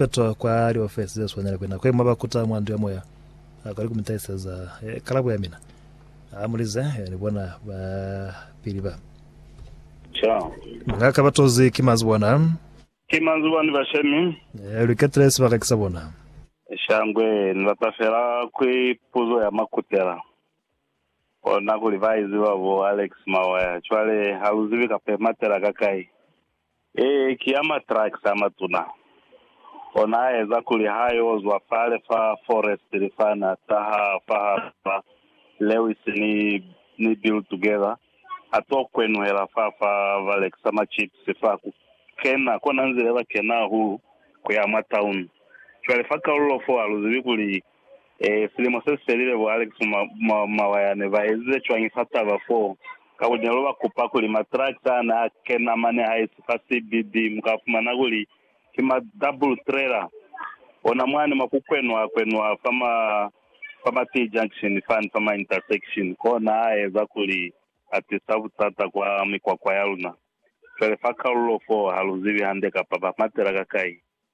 Petro kwa liofesi ze swanela kwe nako ye mwa ba kuta mwa ndu ya moya, a kali ku mi tahiseza eh, kalabo ya mina. A mulize, eh, ni bona ba pili ba. Cha. Nga ka ba tozi ki manzwi bona. Ki manzwi bani ba shemi. Eh, lu iketile sibaka ki sa bona. Shangwe, ni bata fela kwi puzo ya makutela. Kona kuli ba iziba bo Alex Mawaya. Cwale, ha lu zibi kapa imatela ka kai. Ee, ki a matrakisi amatuna. Ona aeza kuli ha yo zwa fale fa Forest li fana taha fahal'a Lewis ni, ni Bill together, a to kwenuhela fa, fa ba lekisa ma chips fa, ku kena, kona nzile ba kena hulu ku ya mwa tauni. Cwale fa kaulul'o fo, ha lu zibi kuli E, silimo se si felile, bo Alex Mawaya ne ba ezize cwañi fa taba foo? Ka kuli ne lu ba kupa kuli matractor a ne a kena mane ha esi fa CBD, mu ka fumana kuli ki ma double trailer, ona mwani mwa ku kwenwa kwenwa fa ma, fa ma T-junction fani, fa ma intersection, kona a eza kuli a tisa butata kwa mikwakwa ya luna. Fele fa kalulo foo ha lu zibi hande kapa ba matela ka kai.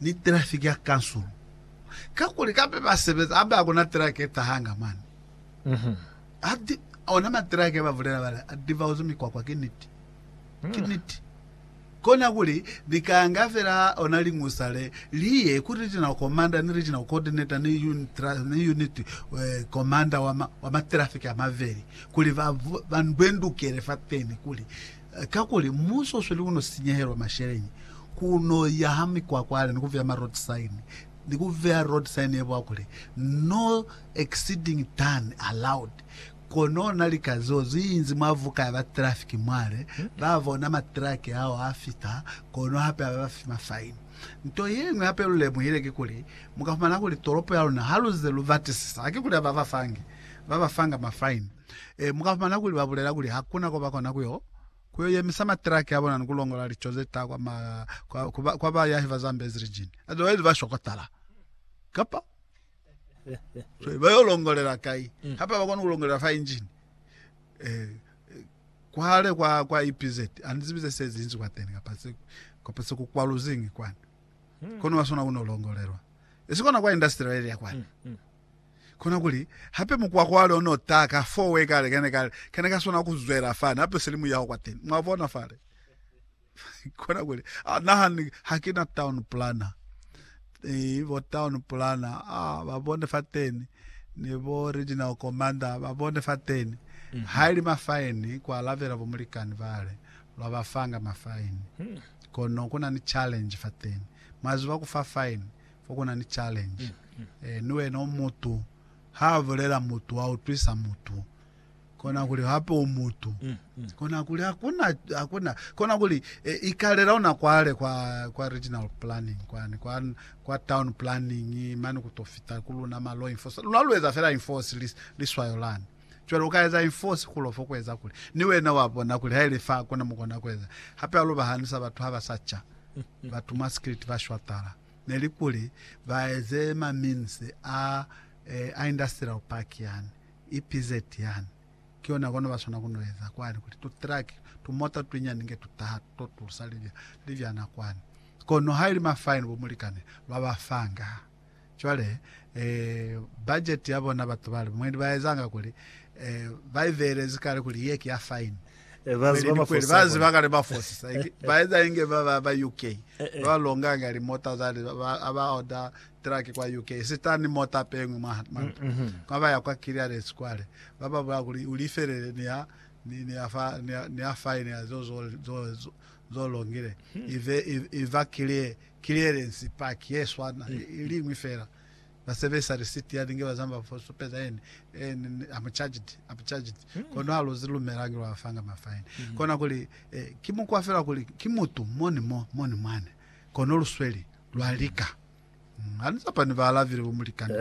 ni trafiki ya kansulu kakuli kape ba sebeza abe akuna trake e tahanga mane Adi, ona matrake ba bulela bale adivaozi mikwakwa ki niti ki niti kona kuli ni kanga fela ona lingusa le liye ku regional commander ni regional coordinator ni unit ni unit eh, commander wa ma, wa matrafiki amaveli kuli ba ba ndwendukele fateni kuli Kakuli muso usweli kuno sinyehelo masheleñi, kuno yaha mikwakwaale ni kuveya ma road sign, ni kuveya road sign ye bwa kuli no exceeding turn allowed. Kono ona lika zeo ziinzi mwa vuka ya ba traffic mwale, ba bona ma truck ao a fita, kono hape aba bafi ma fine. Nto yeñwi hape lu lemuhile kikuli, muka fumana kuli tolopo ya luna haluze lu batisisa, hakikuli aba bafangi, ba bafanga ma fine. E, mu ka fumana kuli ba bulela kuli ha ku na ko ba kona ku yo, ku yo yemisa matiraki a bona ni ku longola lico ze ta kwa, ma, kwa, ku ba, kwa bayahi ba Zambezi Region. Otherwise ba shokotala. Kapa? Jwale ba yo longolela kai? Mm. Hapa ba kona ku longolela fa engine. Eh, kwale kwa, kwa EPZ, anizibi ze se zinzi kwa teni, kapa se, kapa se ku kwaluzingi kwani. Hmm. Kono ba sona ku no longolelwa. Esi kona kwa industrial area kwani. Hmm. Hmm. Kona kuli, hape mukwakwale o n'o taha ka foo we kale kane kale, kane ka swana ku zwela fani, hape silimu ya ho kwa teni. Mwa bona fale? Kona kuli, Ah, na ha, ha ki na town planner. Ii, bo town planner, ah, ba bone fateni, ni bo regional commander, ba bone fateni. Mm-hmm. Ha ili mafaini, ku alabela bo mulikani bale, lwa ba fanga mafaini. Hmm. Kono ku na ni challenge fateni. Mwa ziba ku fa faini, Fo kuna ni challenge. Eh, ni wena u mutu. Ha bulela mutu wa utwisa mutu. Kona kuli hape u mutu. Kona kuli hakuna, hakuna. Kona kuli eh, ikalela una kwale kwa, kwa regional planning kwani, kwa, kwa town planning, mani kuto fita ku luna ma law enforce. Luna lu eza fela enforce li, liswayo lani. Cwale uka eza enforce kulo fo kueza kuli, ni wena wa bona kuli haile fa hakuna mukona kueza. Hape alu bahanisa batu haba sa cha. Batu mwa street ba shwatala. neli kuli ba eze ma mines a a industrial park yani, EPZ yani, ki yona kono ba swana ku no eza kwani kuli tu truck, tu mota twinyani nge tu taha tu to tusa libya, libyana kwani. Kono ha ili ma fine bo mulikani lwa ba fanga. Cwale eh budget ya bona batu bale mwendi ba ezanga kuli eh ba i beelezi kale kuli ye ki ya fine. Bazi ba mafosi ba ziba kale ba fosisa ba eza inge ba ba ba UK eh, eh. ba longa nga li mota za li ba ba order truck kwa UK sitan mota pengwe mwa mm, manta mm -hmm. kwa ba ya kwa clearance kwale ba ba bula kuli ulifelele ni ya ni ni ya fa ni ya, ni ya fine ya zo zo zo, zo, zo longile hmm. ive iva clear clearance park yeswana mm. ilingwi fela Ba sebelisa receipt ya linge ba zama fo supeza yene and I'm charged, I'm charged. Mm. Kono ha lu zi lumela ki lwa fanga ma fine. Mm. Kona kuli eh, ki mukwa fela kuli ki mutu moni mo, moni mwane. Kono lu sweli, lwa lika. Mm. Ani zapa ni ba alavile bo mulikani.